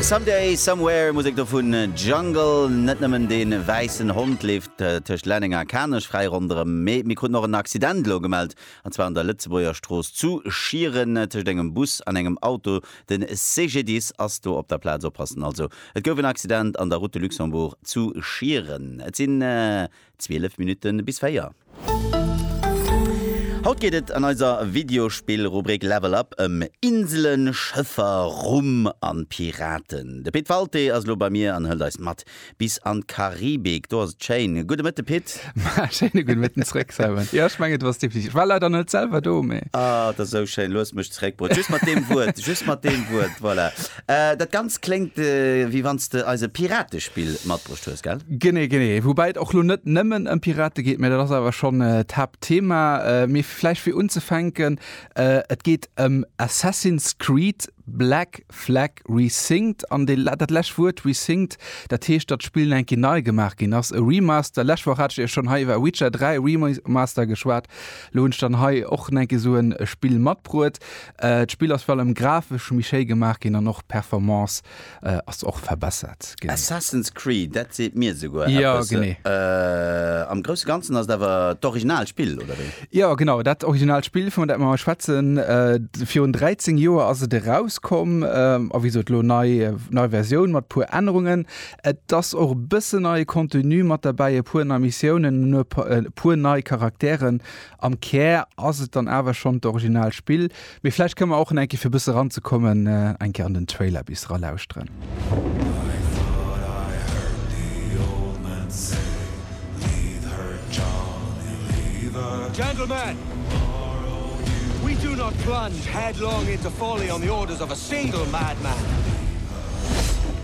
Someday, Somewhere, Musek do vun Jungle. Net nëmmen de wäissen Hond leeft tëscht Lenneng a Kanech fräi ronderëm, mee mir kruten och en Accident elo gemellt, an zwar an der Lëtzebuerger Strooss zu Schieren tëscht engem Bus an engem Auto. De CGDIS ass do op der Plaz. Oppassen also, et gouf en Accident an der Route de Luxembourg zu Schieren. Et sinn 12 Minutten bis 4. Haut geet et an eiser Videospill-Rubrik Level Up ëm Inselen, Schëffer, Rum an Piraten. De Pit Walté ass elo bei mir an hëlt eis mat bis an d'Karibik. Do ass et schéin. Gudde Mëtte Pit. Maa, schéine gudde Mëtten zréck Simon. Jo, ech mengen du ass definitiv, ech war leider net selwer do, mee. Ah, et ass esou schéin. Looss mech zréckbruecht. Just mat deem Wuert, just mat deem Wuert, voilà. Dat Ganzt kléngt, wéi wann s de eis e Piratespill matbruecht hues, gell? Genee, genee. Woubäi et och lo net nëmmen ëm Pirate geet, mä dat ass awer schonn d'Haaptthema. Mee vläicht fir unzefänken, Et geet ëm Assassin's Creed, Black Flag Resynced. An dee, dat lescht Wuert, resynced, dat heescht, datt d'Spill eng Kéier nei gemaach ginn ass. E Remaster, d'lescht Woch hat ech iech schonn hei iwwer Witcher 3 Remaster geschwat, elo hunn ech dann hei och eng Kéier esou e Spill matbruet. D'Spill ass virun allem grafesch méi schéi gemaach ginn an och d'Performance ass och verbessert ginn. Assassin's Creed, dat seet mir esouguer eppes. Jo, genee. Am Grousse Ganzen ass et awer d'original Spill, oder wéi? Jo, genau, dat original Spill, vun dat mir hei schwätzen. Virun 13 Joer ass et erauskomm a wéi gesot elo nei, nei Versioun mat e puer Ännerungen. Et ass och e bëssen neie Contenu mat derbäi, e puer nei Missiounen, e puer nei Charakteren Am Kär ass et dann awer schonn d'original Spill, mee vläicht kënne mer och enke fir e bësse ranzekommen eng Kéier an den Trailer bis ralauschteren.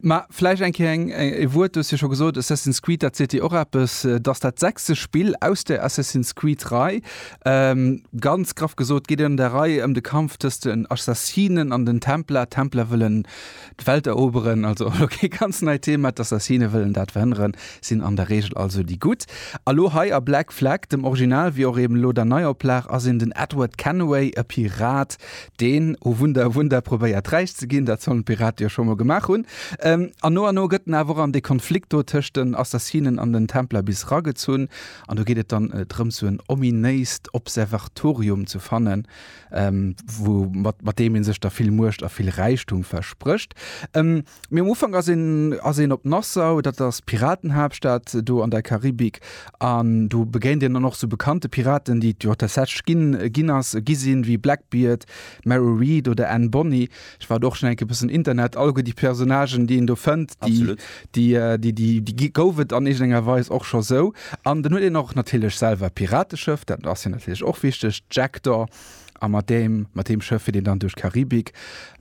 Mä vläicht eng Kéier eng, e Wuert, du hues jo scho gesot, Assassin's Creed, dat seet Dir och eppes, et ass dat sechste Spill aus der Assassin's Creed-Rei. Ganz graff gesot geet et an där Rei ëm de Kampf tëscht den Assassinen an den Templer. D'Templer wëllen d'Welt eroberen, also elo kee ganz neit Thema. D'Assassine wëllen dat verhënneren, sinn an der Reegel also déi Gutt. A elo hei a Black Flag, dem Original wéi och eben elo der Neioplag, ass een den Edward Kenway, e Pirat, Deen O Wunder, Wunder probéiert räich ze ginn, dat sollen d'Piraten jo scho mol gemaach hunn. An no an no gëtt en awer och an dee Konflikt do tëscht den Assassinen an den Templer bis ragezunn. An do geet et dann drëms, sou en ominéist Observatorium ze fannen, wou, mat deem ee sech da vill Muecht a vill Räichtum versprécht. Mee um Ufank ass een ass een op Nassau, dat ass d'Piratenhaaptstad do an der Karibik. An do begéint een dann och sou bekannte Piraten, déi et jo tatsächlech ginn ginn ass gi sinn, wéi Blackbeard, Mary Read oder Anne Bonny. Ech war do och schonn eng Kéier e bëssen Internet algoen, déi Personnagen, déi een do fënnt, déi déi déi déi déi gi gouf et an iergendenger Weis och scho sou. An dann huet een och natierlech selwer e Pirateschëff, dat ass jo natierlech och wichteg, d'Jackdaw. A mat deem, mat deem Schëff fiert een dann duerch d'Karibik,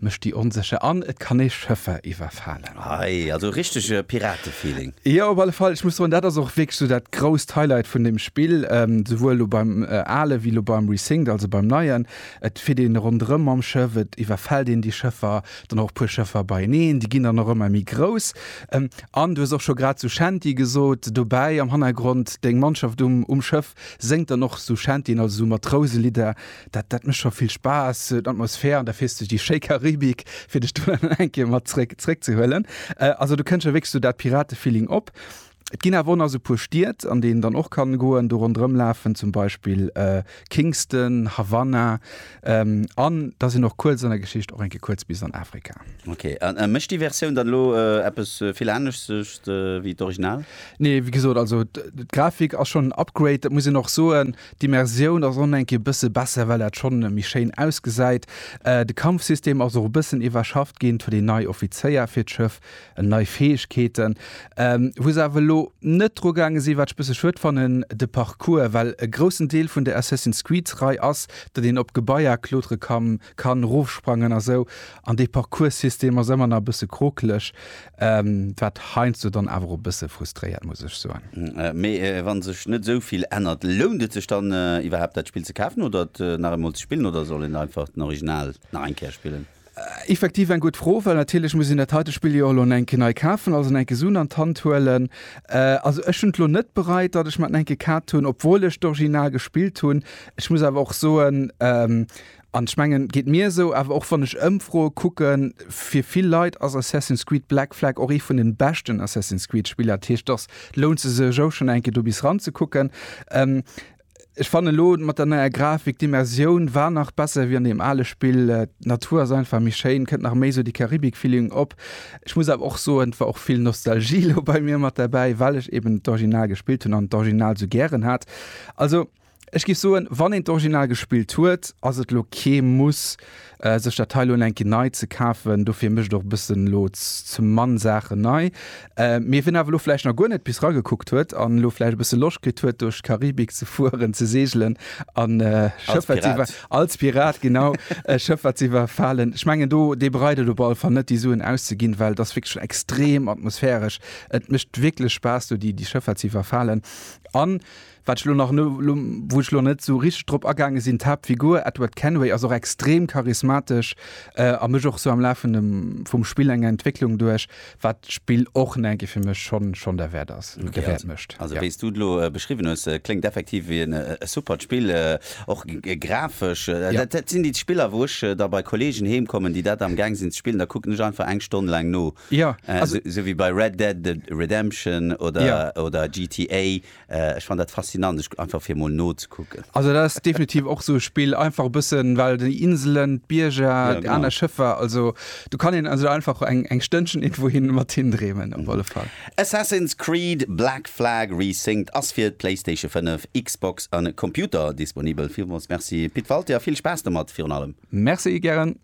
mécht déi onsécher an et kann ee Schëffer iwwerfalen. Hei, also richtege Pirate-Feeling. Jo, op alle Fall. Ech muss soen, dat ass och wierklech esou dat grousst Highlight vun deem Spill, souwuel elo beim ale wéi elo beim Resynced, also beim neien. Et fiert ee ronderëm mam Schëff, et iwwerfält een déi Schëffer, dann och e puer Schëffer beieneen, déi ginn dann och ëmmer méi grouss. An du hues och scho grad zu Shanty gesot, dobäi am Hannergrond deng Mannschaft um Schëff, Séngt dann och sou Shanty'en, also sou Matrouselieder. Dat, dat mécht scho vill Spaass, d'Atmosphär an da fiers de déi schéi Karibik, fir dech do dann eng Kéier mat zréck, zréck ze huelen. Also do kënnt jo wierklech sou dat Pirate-Feeling op. Et ginn awer och nach sou e puer Stied, an déi een dann och kann goen, do ronderëmlafen, zum Beispill Kingston, Havanna. Ähm, an da sinn och kuerz an der Geschicht och eng Kéier kuerz bis an Afrika. Ok, an äh, mécht déi Versioun dann elo äh, eppes äh, vill anesches äh, wéi d'Original? Nee, wie gesot, also d'Grafik ass schon en Upgrade, dat muss een och soen. D'Immersioun ass och eng Kéier bësse besser, well dat schon méi schéin ausgesäit. Äh, de Kampfsystem ass och e bëssen iwwerschafft ginn, et huet een nei Offizéier fir d'Schëff, Ëm nei Fäegkeeten, wou se awer elo net dru gaange sinn, wat ech e bësse schued fannen, de Parcours, well e groussen Deel vun der Assassin's Creed-Rei ass, datt een op Gebaier klotere kann, kann erofsprangen a sou, an dee Parcourssystem ass ëmmer nach e bësse krokeleg, wat heiansdo dann awer och e bësse frustréiert, muss ech soen. Mee wa sech net esou vill ännert, lount et sech dann iwwerhaapt, dat Spill ze kafen oder et nach eemol ze spillen, oder soll een einfach den Original nach eng Kéier spillen? Effektiv eng gutt Fro, well natierlech muss een dat heite Spill jo elo eng Kéier nei kafen, also eng Kéier Suen an d'Hand huelen. Also ech hunn et elo net bereit, datt ech mer et eng Kéier kat hunn, obwuel ech d'Original gespillt hunn. Ech muss awer och soen, an ech mengen, geet mir esou, awer och wann ech Ëmfroe kucken, fir vill Leit ass Assassin's Creed Black Flag och ee vun de beschten Assassin's Creed Spiller. Dat heescht, dass lount se sech ou schonn eng Kéier do bis ran ze kucken. Ech fannen elo mat der neier Grafik, d'Immersioun war nach besser wéi an deem ale Spill. D'Natur ass einfach méi schéin, kënnt nach méi esou dee Karibik-Feeling op. Ech muss awer och soen, et war och vill Nostalgie elo bei mir mat derbäi, well ech eben d'Original gespillt hunn an d'Original esou gären hat. Also ech géif soen, wann een d'Original gespillt huet, ass et elo kee Muss, sech dat hei elo eng Kéier nei ze kafen. Dofir mécht och e bëssen elo zum Mann Saachen nei. Mee wien awer elo vläicht nach guer net bis ragekuckt huet an elo vläicht e bësse Loscht kritt huet duerch d'Karibik ze fueren, ze seegelen an e Schëff, wat s'iwwer. Als Pirat. Als Pirat, genau. E Schëff, wat s'iwwerfalen. Ech mengen do, dee bereut et op alle Fall net déi Suen auszeginn, well et ass wierklech schon extrem atmosphäresch. Et mécht wierklech Spaass do déi Schëffer ze iwwerfalen an Wat ech elo nach no, elo wou ech elo net esou richteg drop agaange sinn, d'Haaptfigur Edward Kenway ass och extrem charismatesch a mécht och esou am Laf vun dem, vum Spill eng Entwécklung duerch, wat d'Spill och en enke fir mech schonn, schonn derwäert ass, derwäert mécht. Also wéi s du et elo beschriwwen hues, kléngt effektiv wéi en suppert Spill, och grafesch. Dat sinn déi Spiller wou ech da bei Kollegen heem kommen, déi dat am gaang sinn ze spillen, da kucken ech einfach eng Stonn laang no, esou wéi bei Red Dead Redemption oder GTA, Ech fann dat faszinant, ech einfach fir mol nozekucken. Also dat ass definitiv och sou e Spill, einfach e bëssen, well déi Inselen, d'Bierger, déi aner Schëffer, also do kann een also einfach eng eng Stënnchen iergendwou hin mat hin dreemen op alle Fall. Assassin's Creed, Black Flag Resynced ass fir d'Playstation 5, Xbox a Computer disponibel. Villmols merci Pit Walté a vill Spaass domat virun allem. Merci, gären.